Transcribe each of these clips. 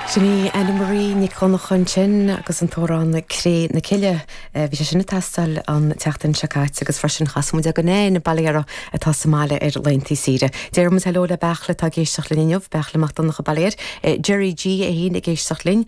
Sin í Anna Marie Nic Dhonnacha ansin agus an t-amhrán Cré na Cille. Bhí sé sin ag teastáil an tseachtain seo caite agus freisin chas muid Eoghan N. Balaréara atá sa mbaile ar laethantaí saoire. Déarfaimid heileo le Beachla atá ag éisteacht linn inniu, Beachla Mac Donncha Balair, Jerry G, é fhéin ag éisteacht linn,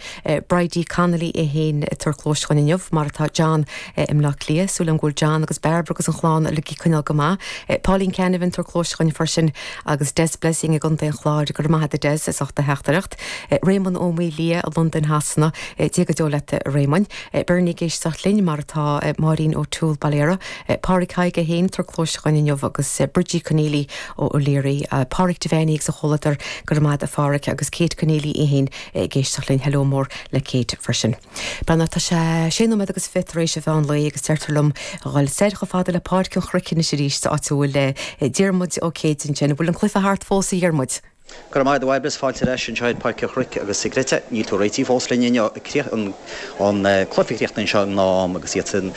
Bridie Connolly í fhéin ag tabhairt cluais chugainn inniu mar atá John i mBleá Cliath, súil agam go bhfuil John agus Bairbre agus an chlann uilig ag coinneáil go maith. Pauline Canavan ag tabhairt cluais chugainn freisin. agus Des Blessing i gContae an Chláir, go raibh maith a't a Des, as ucht do theachtaireacht. Réamonn Ó Maoildhia i Londain Shasana, Dia go deo leat a Réamoinn. Berni ag éisteacht linn, mar atá Máirín O'Toole Bailéara, Pádraig Thaidhg é féin ag tabhairt cluais chugainn inniu agus Bridgie Conneely O'Leary, Páraic Devenney agus a chomhluadar, go raibh maith a't a Pháraic, agus Kate Conneely í féin ag éisteacht linn, hello mór le Kate freisin. B'ann Tá sé sé nóiméad agus fiche tar éis an mheán lae agus deirtear liom a dhul soir chomh fada le Páirc an Chnoic anois arís sa áit a bhfuil Diarmuid Ó Céidigh ansin. An bhfuil an cluiche thart fós, a Dhiarmuid? Go raibh maith agat, Babs. Fáilte ar ais anseo ar Pháirc an Chnoic agus an gcreidfeá. Níl tú réitithe fós linn inniu. an cluiche a chríochnaigh anseo i ngnáth-am agus iadsan,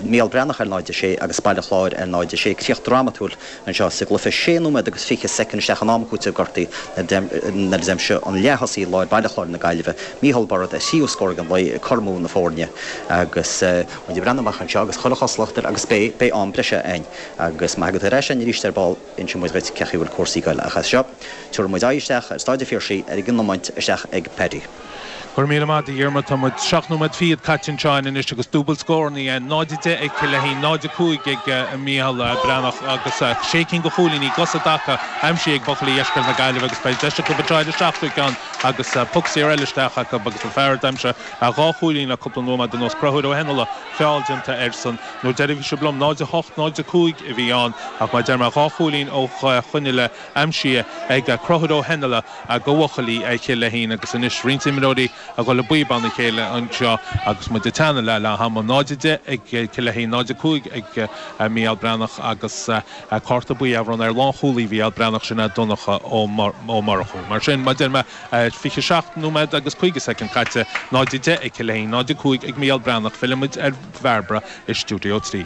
Mícheál Breathnach ar 0, 6 agus Baile Chláir ar 0, 6, críoch drámatúil. Anseo, sa gcluiche sé nóiméad agus fiche soicind isteach in am cúitimh gortaithe nuair a d'aimsigh an leath-thosaí láir Baile Chláir na Gaillimhe, Micheál Bairéad, a thríú scór dhon ló ag cothromú na foirne agus, muid ag breathnú amach anseo agus chuile chosúlacht air agus beidh, beidh am breise a'inn agus má thagann tú ar ais a'inn arís ar ball inseoidh muid dhuit cé chaoi a bhfuil cúrsaí ag goil ach as seo, tabharfaidh muid aghaidh isteach ar Stáid an Phiarsaigh ar an iomáint isteach ag Paddy. Go raibh míle maith a't a Dhiarmaid, tá muid seacht nóiméad fichead caite anseo anois agus dúbailt scór ann, 0:10 ag Cill Leithín, 0:05 ag Mícheál Breathnach agus sé cinn de chúilíní gus i dtaca aimsithe ag buachaillí dheisceart na Gaillimhe agus beidh deis acu a dtráil an seachtú ceann agus puc saor eile isteach acu agus an fear a d'aimsigh dhá chúilín le cúpla nóiméad anuas, Conchúr Ó hEinnealla, feall déanta airsean an uair dheiridh a bhí sibh liom 0:08, 0:05 a bhí ann ach mar a deir mé dhá chúilín ó shin i leith aimsithe ag Conchúr Ó hEinnealla, do bhuachaillí Chill Leithín agus anois roinnt imreoirí a dhul i bpíobán a chéile anseo agus muid ag teannadh le leath ama, 0:10 ag Cill Leithín, 0:05 ag Mícheál Breathnach agus cárta buí á bhronnadh ar lánchúlaí Mhícheál Breathnach, sin é Donncha Ó Murchú. Mar sin, mar a deir mé 27 nóiméad agus 50 soicind caite, 0:10 ag Cill Leithín, 0:05 ag Mícheál Breathnach, fillfimid ar Bhairbre i Stiúideo 3.